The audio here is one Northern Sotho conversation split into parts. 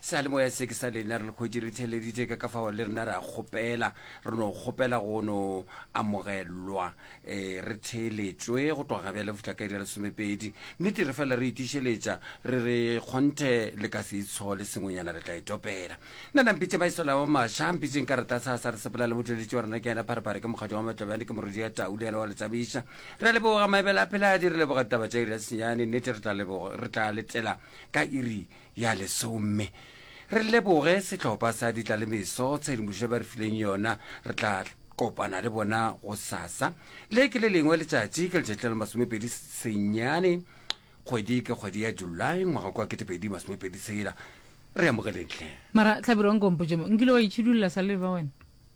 Seyalemoya se ke sa lena, re le kgwetši re theeleditše ka ka fao le rena re a kgopela, re no kgopela go no amogelwa, e, re theeletšwe go tloga bjale go fihla ka iri ya lesomepedi. Nnete re fela re itišeletša, re re kgonthe le ka se itshole sengwenyana re tla e topela. Nna na mpitše Maesela wa Masha, mpitšeng ka rata sa sa re sepela le motleletši wa rena ke yena Pharephare, ke mokgatšwa wa Matlobjane, ke morwedi ya Tau le yena wa le tšamiša. Re a leboga Maebela a Pheladi, re leboga ditaba tša iri ya senyane, nnete re tla leboga, re tla letela ka iri ya lesome. Re leboge sehlopha sa ditlalemeso tshedimošo ba re fileng yona. Re tla kopana le bona go sasa le ke le lengwe letšatši ke letšatši la le masomepedi senyane kgwedi ke kgwedi ya july ngwaga kwa ketepedi masomepedi sela re amogeleng tlhe mara tlhabiro nkompotšemo nkile wa itšhidulela sa leba wena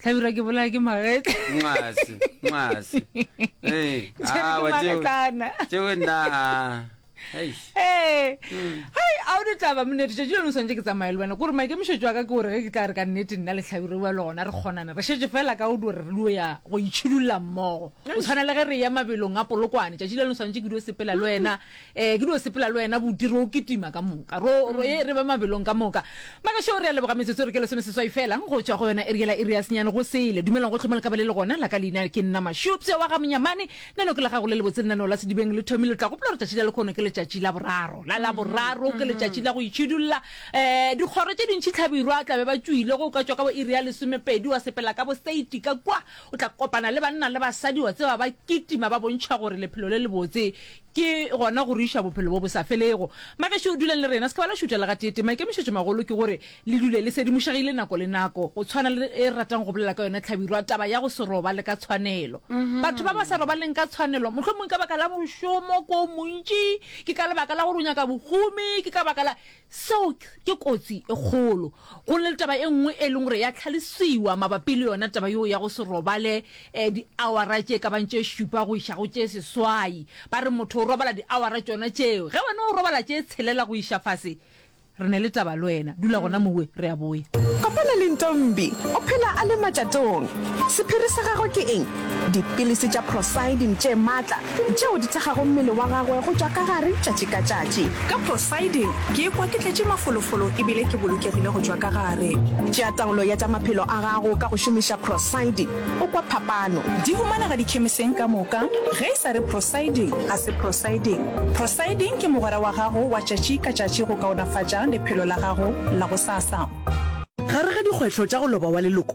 tlhabirwa ke bolaya ke magetla ngwase ngwase Eh, Tšere ah, ke wa tseo- magetlana. tseo nna ah. Eish. ee hai a o ditlaba monete tšatši leno swantse ke tsamaye le wena kore maikemišetšo a ka ke gore ge ke tla re ka nnete nna le tlhabiro wa le gona re kgonana re šetse fela ka o di gore re dio ya go itšhidulla mmogo o tshwana le ge re ya mabelong a polokwane tšatši leno swantse ke dio sepela le wena Ee, ke dio sepela le wena buti, ro kitima ka moka, ro, ro ye re be mabelong ka moka. Magašo re a leboga metsotso re ke lesome seswai fela, go tšwa go yona eri yela iri ya senyane go sele. Dumelang gohle mo le ka ba le le gona, la ka leina ke nna Mashu, pseo wa ga Monyamane. Nano ke la gago le lebotse, lenaneo la Sedibeng le thomile, le tla gopola gore tšatši la lekhono ke letšatši la boraro, la la boraro ke letšatši la go itšhidulla. Um, dikgoro tše dintši tlhabirwa tla be ba tšwile, ge o ka tšwa ka bo iri ya lesomepedi wa sepela ka bo seiti ka kua, o tla kopana le banna le basadi wa tseba ba kitima ba bontšha gore lephelo le lebotse Ke gona go re iša Bophelo bo bo sa Felego. Bagešo, duleng le rena, se ke ba la šutša le gateetee. Maikemišetšomagolo ke gore le dule le sedimošegile nako le nako, go tshwana le e re ratang go bolela ka yona hlabirwa, taba ya go se robale ka tshwanelo. Batho ba ba sa robaleng ka tshwanelo, mohlomongka baka la mošomo ko o montši, ke ka lebaka la gore o nyaka bohumi, ke ka baka la. Seo ke kotsi e kgolo. Go na le taba e nngwe e leng gore ya tlhalosiwa mabapi le yona taba yeo ya go se robale um diawara tše ka bang tše šupa go iša go tše seswai. Ba re motho o robala diawara tšona tšeo. Ge wena o robala tše tshelela go iša fase, re na le taba le wena. Dula gona mowe, re a boya. Kopana le Ntombi. O phela a le matšatong. Sephiri sa gagwe ke eng? Dipilisi tša prosidine tše maatla tšeo di thekgago mmele wa gagwe go tšwa ka gare tšatši ka tšatši. Ka Poseidon ke ikwa ke tletše mafolofolo e bile ke bolokegile go tšwa ka gare. Tšea taolo ya tša maphelo a gago ka go šomiša Proseidon, o kwa phapano. Di humanega dikhemiseng ka moka. Ge e sa re Proseidon, ga se Proseidon. Proseidon ke mogwera wa gago wa tšatši ka tšatši go kaonafatša lephelo la gago la gosasa. Gare ga dikgwetlho tša go loba wa leloko,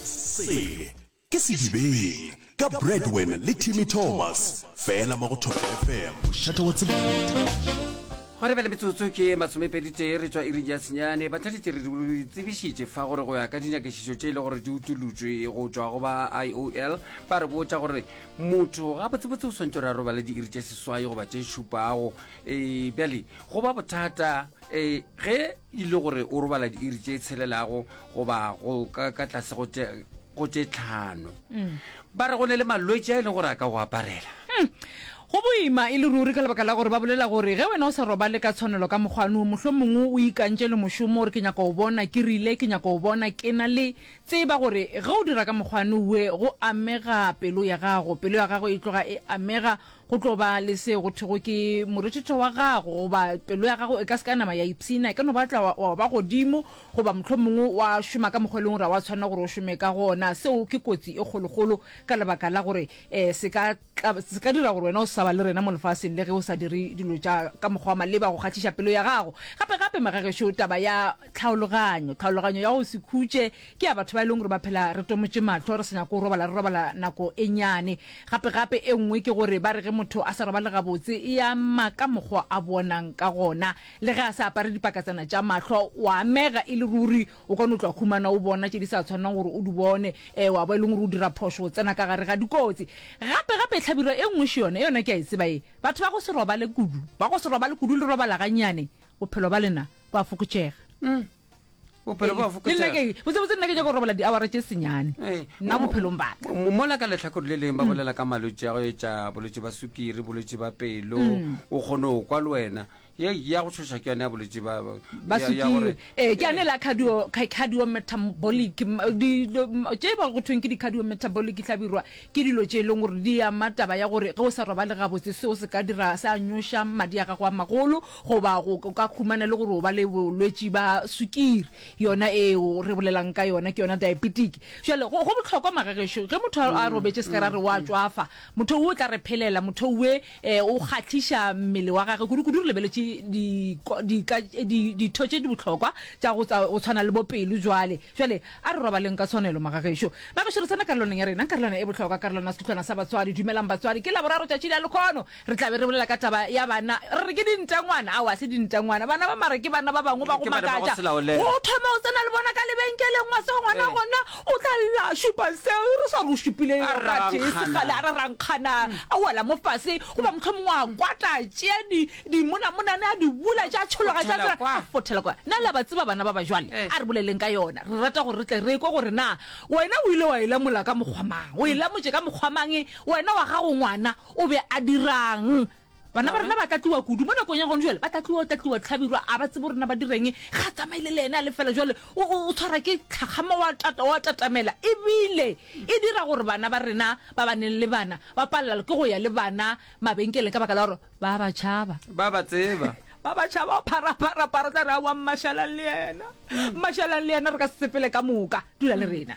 Sele ke sedibeng ka Bradwin le Timmy Thomas fela mo go Thobela FM mošate wa tsebeta. Gwa re bjale metsotso ke ye masomepeditee re tšwa iring ya senyane. Batladitše re di tsebišitše fa gore go ya ka dinyakešišo tše e le gore di utolotšwe go tšwa go ba IOL ba re botša gore motho gabotsebotse o swantšo re a robale diiri tše seswai goba tše šupago. E bjale go ba bothata e ge e le gore o robala diiri tše tshelelago goba go ka ka tlase go tše go tše tlhano mm. ba re go ne le malwetse a e leng gore a ka go aparela hmm. go boima e le ruri ka lebaka la gore ba bolela gore ge wena o sa robale ka tshwanelo ka mokgwano mohlho mongwe o ikantše le mošomo gore ke nyaka go bona ke rile ke nyaka go bona ke na le tseba gore ge o dira ka mokgwano we go amega pelo ya gago pelo ya gago e tloga e amega Go tlo ba le seo go thwego ke morethetho wa gago, goba pelo ya gago e ka se ka ya nama ya ipshina. E ka no batla wa, wa ba godimo, goba mohlomongwe wa šoma ka mokgwa e leng gore ga wa tshwanela gore o šome ka gona. Seo ke kotsi e kgolokgolo ka lebaka la gore um se ka tla, se ka dira gore wena o se sa ba le rena mo lefaseng le ge o sa dire dilo tša ka mokgwa wa maleba go kgahliša pelo ya gago. Gape-gape, magagešo, taba ya. Tlhaologanyo. Tlhaologanyo ya go se khutše ke ya batho ba e leng gore ba phela re tomotše mahlo, re sa nyake go robala, re robala nako e nnyane. Gape-gape e nngwe ke gore ba re ge motho a sa robale gabotse e ama ka mokgwa a bonang ka gona. Le ge a sa apare dipakatsana tša mahlo, o a amega e le ruri. O ka no tloga humana o bona tše di sa tshwanelang gore o di bone, ee, wa ba e leng gore o dira phošo, o tsena ka gare ga dikotsi. Gape-gape hlabirwa e nngwe še yona, yona ke a e tseba ye, batho ba go se robale kudu. Ba go se robale kudu le robala gannyane. bophelo ba lena bo a fokotšega mm. bophelo bo a fokotsebotse nna ke ja go robala diawara tše senyane eh, nna bophelong baka mola ka letlhakore le leng ba mm. bolela ka malwetse ya go etša bolwetse ba sukiri bolwetse ba pelo mm. o kgone go kwa le wena ya go tshosa ke yone ya bolwetse ba sukiri ee ke yane la cardio metabolic tše ba go thweng ke di-cardio metabolic tlhabirwa ke dilo tše e leng gore di ama taba ya gore ge o sa robale gabotse seo se ka dira se a nyoša madi a gago a magolo Goba go ka humana le gore o ba le bolwetši ba sukiri, yona eo re bolelang ka yona ke yona diabetic. Jale go, go bohlokwa magagešo, ge motho a robetše se ka ra re o a tšwafa, motho wo o tla re phelela, motho we eh, o kgahliša mmele wa gage, kudu-kudu re lebeletše di, di, ka, di, ditho tše di bohlokwa tša go, tsa go tshwana le bo pelo. Jale, jale a re robaleng ka tshwanelo magagešo. Magešo re tsena karolwaneng ya rena, karolwana e bohlokwa, karolwana ya sehlohlwana sa batswadi. Dumelang batswadi, ke Laboraro tšatši la lekhono. Re tla be re bolela ka taba ya bana, re re ke dintengwana. Ao, ga se dintengwana. Bana ba mara ke bana ba bangwe ba go makatša. O thoma o tsena le bona ka lebenkeleng, wa tseba ngwana gona o tla lla a šupa se re sa go šupilego gatee sekgale, a rarankgana, a wela mo fase, goba mohlomongwe a kwata, a tšea dimonamonane, a di bula, tša tšhologa, tša dira, a fothela kwa. Na le a ba tseba bana ba bajwale? A re boleleng ka yona. Re rata gore re tle re ekwe gore na wena o ile wa e lamola ka mokgwa mang, o e lamotše ka mokgwa mang wena wa gago ngwana. O be a dira'ng? Bana ba rena ba tlatliwa kudu. Mo nakong ya gone jwale, ba tlatliwa, o tlatliwa tlhabirwa, a ba tsebe rena ba direng, ga a tsamaile le ene a le fela jwale. O, o, o tshwara ke tlhakgama, wa tata, wa tatamela. E bile e dira gore bana ba rena ba ba neng le bana ba palelwa ke go ya le bana mabenkeleng ka baka la gore ba ba tšhaba. Ba ba tseba. Ba ba tšhaba, o pharaphara, phara, o tla re, Aowa, mmashalang le yena, mmashalang le yena, re ka se sepele ka moka. Dula le rena.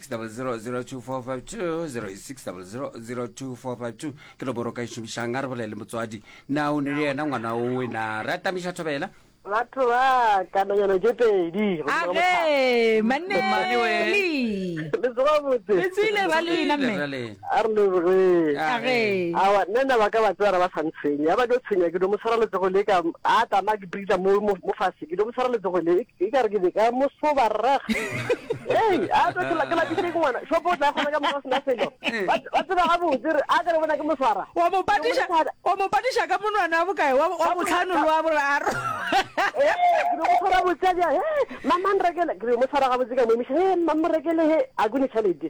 60002452086000245 ke nomoro ka e šomišang a re bolele motswadi na o ne le yena ngwana o wena re atamiša thobela batho ba kananyana tše pedi age maneli le tsoga botse le tswile ba lena mme a re le re A re. awa nna nna ba ka ba tseba ra ba sa ntshwenye a ba tlo tshwenya ke do mo tshwara letsogo le ka a tama ke britla mo mo mo fase ke do mo tshwara letsogo le e- e ka re ke be ka mo soba rrag ei a tlo tla ke lapitse ke ngwana shopo o tla kgona ka moka sena selo ba ba tseba ga botse re a ka re bona ke mo tshwara wa mo patiša wa mo patiša ka monwana wa bokae wa wa botlhano le wa boraro Eh, ke be mo tshwara botse a bja he mamang rekele ke be mo tshwara gabotse ka mo emiša he mamang rekele he a kone tšhalete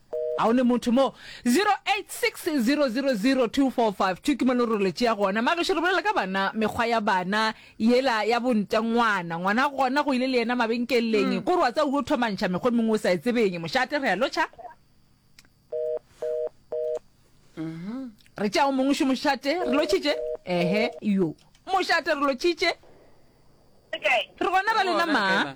A o le motho mo? 0860000245 ke mone role tšea gona. Magešu re bolela ka bana, mekgwa ya bana yela ya bonte ngwana. Ngwana gona go ile le yena mabenkeleng. Ko re wa tsa uyo thomantšha mekgwa mengwe o sa e tsebeng. Mošate re a lotšha. Re tšea o mongwe šo mošate. Re lotšhitše. Ehe, yo. Mošate re lotšhitše. Re gona ba lena ma.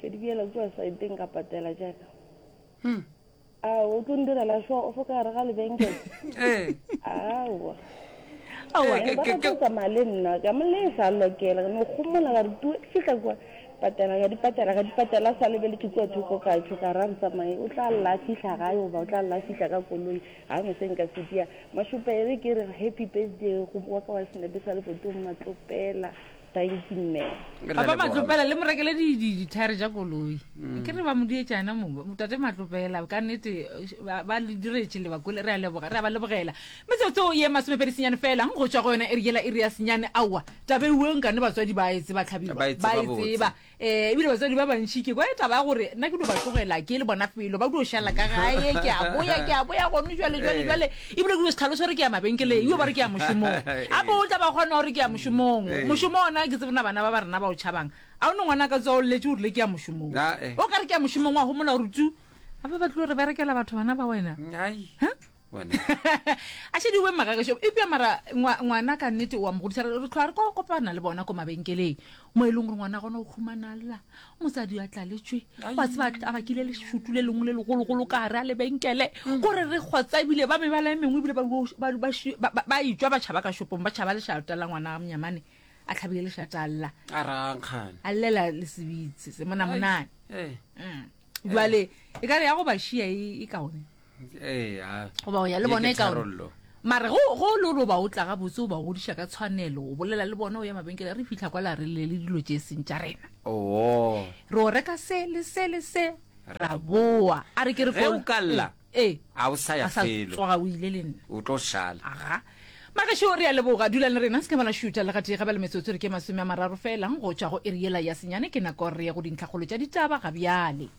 Ke di bjela kua saeteng ka patela jaaka. Hmm. A o tlo ndirela sho o fo ka re ga lebenkele. Eh. Awa. Awa eh, ke ke ke male nna ka mo le sa lokela no gomola ga re tu fihla kwa patela ga dipatela ga dipatela sa lebele ke kwa thoko ka tsho ka ra re tsamaye o tla la fihla ga yo ba o tla la fihla ka koloi ha mo seng ka sitia mashupele ke re happy birthday go bua ka wa sinabe sa le botong matlopela Thank you mme. Re Papa leboga. Matlopela le mo rekele di- di- dithaere tša koloi Mm. ke re ba mo dietšana mo tate Matlopela ka nnete eh, ba ba le diretše lebakole re a leboga re a ba lebogela metsotso ye masomepedi senyane fela go tšwa go yona eri yela iri ya senyane aowa tabe uwe nkane batswadi ba e tseba tlhabilo Ba e tseba ba e botse. tseba Ee, ebile batswadi ba bantši ke kwa taba ya gore nna ke dio ba tlogela ke le bona felo ba dio šala ka gae ke a boya ke a boya gone jale jale jale ebile ke dio se tlhalose gore ke ya mabenkeleng yo ba re ke ya mošomong gape o tla ba kgona gore ke ya mošomong mošomo ona ke tsebona bana ba ba rena ba o tšhabang a o ne ngwana ka tswa o lletše o rile ke ya mošomong o ka re ke ya mošomong wa gomola gore tu gape ba tlilo re berekela batho bana ba wena Bona. a šediwe magagešo epja mara ngwa- ngwana ka nnete wa mogodisa re re tlhoa re ko kopana le bona ko mabenkeleng mo e leng gore ngwana gona o humanalla mosadi a tlaletšwe wa tseba a tla- a bakile lešutu le lengwe le legologolo ka gare a lebenkele gore re kgotsa ebile ba mebala e mengwe ebile ba yo- ba- ba shi- ba- ba- ba etswa ba tšhaba ka shopong ba tšhaba lešata la ngwana ga monyamane a tlhabile lešata alla a rangkgane a llela le sebitse se monamonane Eh, jale e ka re ya go ba šia e e kaone ee a goba o ya le bona e ka mare go go le gore o ba o tla ga botse o ba godiša ka tshwanelo o bolela le bona o ya mabenkele re fitlha kwa la re le le dilo tše seng tša rena oo re o reka se le se le se ra boa a re ke re o kalla ee a o sa ya felo tsoga o ile le nna o tlo shala aga magašo re ya leboga dulang le rena se kemana šuta le gatee gabela metsotso re ke masome a mararo felang go tšwa go eriela ya senyane ke nako re ye go dintlhakgolo tša ditaba ga bjale